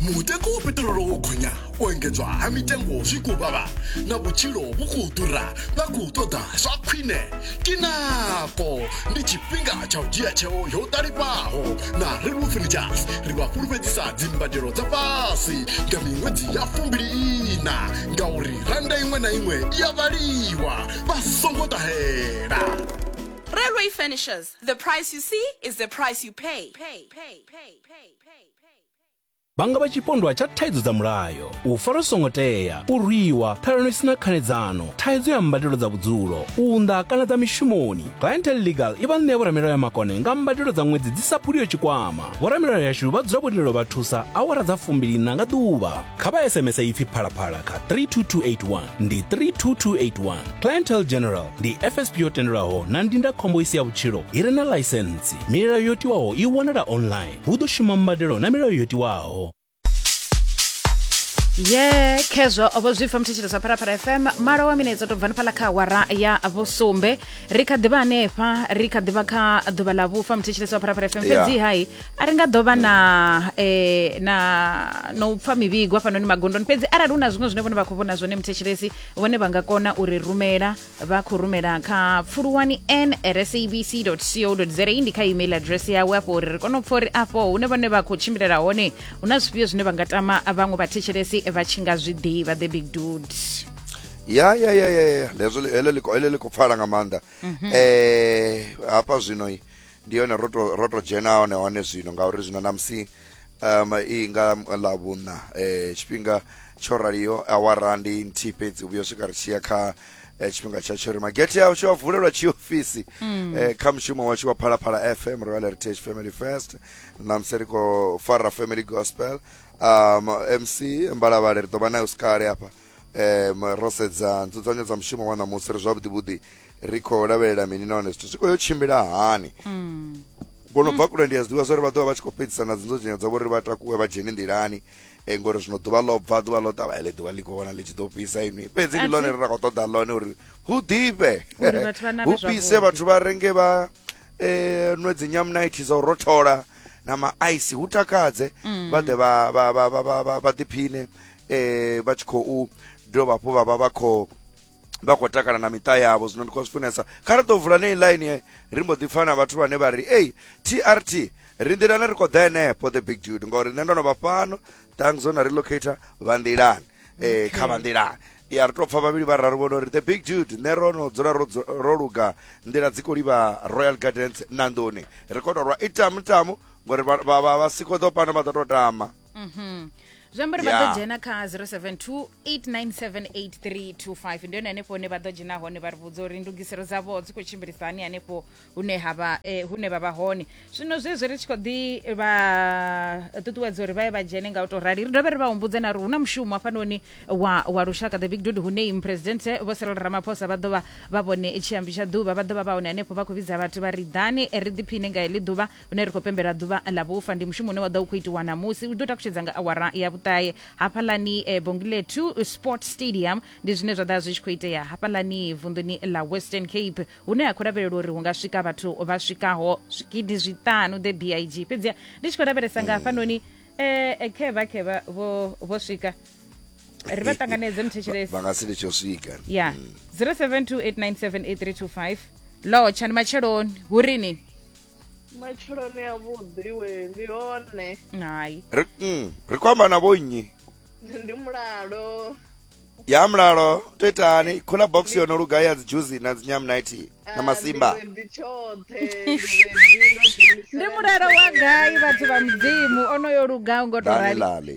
mutengo wa peṱirolo wo gonya u engedzwa ha mitengo zwi khou vhavha na vhutshilo vhu khou ḓura vha khou ṱoḓa zwa khwine kinako ndi tshifhinga tsha u dzhia tsheo yo ṱalifhaho na relwo furnitures ri vha fhulufhedzisa dzimbadelo dza fhasi nga miṅwedzi ya fumbili ina ngauri randa iṅwe na iṅwe i ya vhaliwa vha songo ṱahela Railway Furnishers, the price you see is the price you pay. pay, pay, pay, pay. vha nga vha tshipondwa tsha thaidzo dza mulayo u fara songo tea u rwiwa ṱhalano isina khanedzano thaidzo ya mbadelo dza vhudzulo u unḓa kana dza mishumoni clientel legal i vha ṋea vhoramilayo ya makone nga mbadelo dza ṅwedzi dzi sa phuliyo tshikwama vhoramilayo yashu vha dzula vho lindela vha thusa awara dza fumbilina nga ḓuvha kha vha sms ipfi phalaphala kha 32281 ndi 32281 clientel general ndi fsp yo tendelwaho na ndindakhombo isi ya vhutshilo i re na ḽaisentsi milayo yo tiwaho i wanala online hu ḓo shuma mbadelo na milayo yo tiwaho ye khezwo vho zwi pfa muthetshelo sa pharapara fm malo wa minetse to bvani phala kha awara ya vhusumbe ri kha ḓivha hanefha ri kha ḓivha kha ḓuvha ḽa vhufa muthetshelo sa pharapara fm Yeah. fhedzi hai a ri nga ḓo vha na eh, na na u pfa mivhigo hafhanoni magondoni fhedzi arali hu na zwiṅwe zwine vhone vha khou vhona zwone muthetshelesi vhone vha nga kona u ri rumela vha khou rumela kha pfuluwani n at sabc co za ndi kha email address yawe afho uri ri kone u pfa uri afho hune vhone vha khou tshimbilela hone hu na zwifhio zwine vha nga tama vhaṅwe vhathetshelesi vha tshi nga zwi ḓivha the big dude ya ya ya ya ya lezo li- heḽo liko heḽo liko pfala nga maanḓa eh hafha zwino i, ndi yone ro to ro to dzhena hone hone zwino ngauri zwino namusi um i nga ḽa vhuṋa um tshifhinga tsho raliho awara ndi nthihi fhedzi u vhuya swika ri tshiya kha eh, tshifhinga tsha tshori magete a tsho a vulelwa tshiofisi eh, kha mushumo washu wa phalaphala fm royal heritage family fest namusi ri khou fara family gospel um mc mbalavhale ri ḓo vha nayo sikale hafha um ro sedza nzudzanyo dza mushumo wa ṋamusi ri zwavhuḓi vhuḓi ri khou lavhelela mini nahone zwithu zwi khou yo tshimbila hani mm. kono bva kule ndi a zwiḓivha zwauri vha ḓovha vha tshi khou fhedzisa na dzinzudzanyo dzavho uri vha takuwe vha dzhene nḓilani e ngori zwino ḓuvha ḽo bva ḓuvha ḽo ṱavha ele ḓuvha ḽi khou vhona ḽi tshi ḓo fhisa inwi fhedzi ndi ḽone ri ra khou ṱoḓa ḽone uri hu ḓifhe hu fhise vhathu vha renge vha um nwe dzi nyamnight dza u rothola na maaisi hu takadze mm. vha ḓe vha ḓiphine eh vha tshi khou dovha hafhu vha vha vha khou vha khou takala na miṱa yavho zwino ndi khou zwi funesa kha ri ḓo vula nei line ri mbo ḓi pfa na vhathu vhane vha ri ei trt ri nḓilani ri khou ḓa henefho the big dude ngori nṋe ndo no vha fhano thanks ona relocator vha nḓilani um kha vha nḓilani ya ri tou pfa vhavhili vha raru vhono ri the big dude nṋe ro no dzula ro dzu- ro luga nḓila dzi khou livha royal gardens nandoni ri khou tou rwa i tamu tamu ngori vha- vha vha- vha si khou ḓo pano vha ḓo tou tama Mhm. zwi amba uri vha ḓo Yeah. dzhena kha 0728978325 ndi yone hanefho hune vha ḓo dzhena hone vha ri vhudza uri ndugiselo dzavho dzi khou tshimbilisa hani hanefho hune ha vha eh, hune vha vha hone zwino zwezwi ri tshi khou ḓi vha ṱuṱuwedza uri vha ye vha dzhene nga u tou rali ri dovhe ri vha humbudze na uri hu na mushumo hafhanoni wa, wa lushaka the big dude hune muphuresidenthe vho serelo ramaphosa vha ḓo vha vha vhone tshiambi tsha ḓuvha vha ḓo vha vha hone hanefho vha khou vhidza vhathu vha ri ḓani eh, ri ḓiphine nga heḽi ḓuvha une ri khou pembela ḓuvha ḽa vhufa ndi mushumo une wa ḓa u khou itiwa ṋamusi u ḓo takutshedza nga awara ya vhuṱahe hafhaḽani e, bongile 2 sport stadium ndi zwine zwa ḓa zwi tshi khou itea hafhaḽani vunḓuni ḽa western cape hune ha khou lavhelelwa uri hu nga swika vhathu vha swikaho zwigidi zwiṱanu the big fhedziha ndi tshi khou lavhelesa nga hafhanoni um khevha khevha vho vho swika ri vha ṱanganedze muthetshelesi vha nga si litsho swika ya 0728978325 lotsha ndi matsheloni hu rini matshiloni a vhuḓi we ndi hone hai ri mm, ri khou amba na vhonnyi ndi mulalo ya mulalo to itani khola box yo no luga ya dzi juzi na dzi nyamnighty na masimba Ah, ndi tshoṱhe ndi mulalo wa gai vhathu vha mudzimu onoyo lugaho ngo to rali lale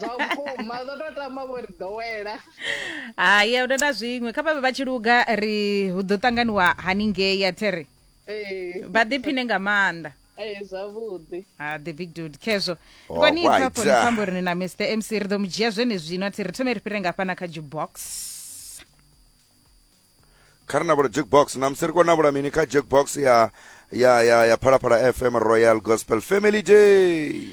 zwa vhukuma zwo to tama vho ri ḓowela hai a huna na zwiṅwe kha vhavhe vha tshi luga ri hu ḓo ṱanganiwa haningei a the ri ee vha ḓiphine nga maanḓa ee zwavhuḓi Ah, the big dude khezwo Oh, kwani right. pfafho ni pfambo ri ni na mr mc ri ḓo mu dzhia zwenezwino a thi ri thome ri fhire nga fhana kha jukebox kha ri na vhula jukebox namusi ri khou na vhula mini kha jukebox ya ya ya ya phalaphala fm royal gospel family day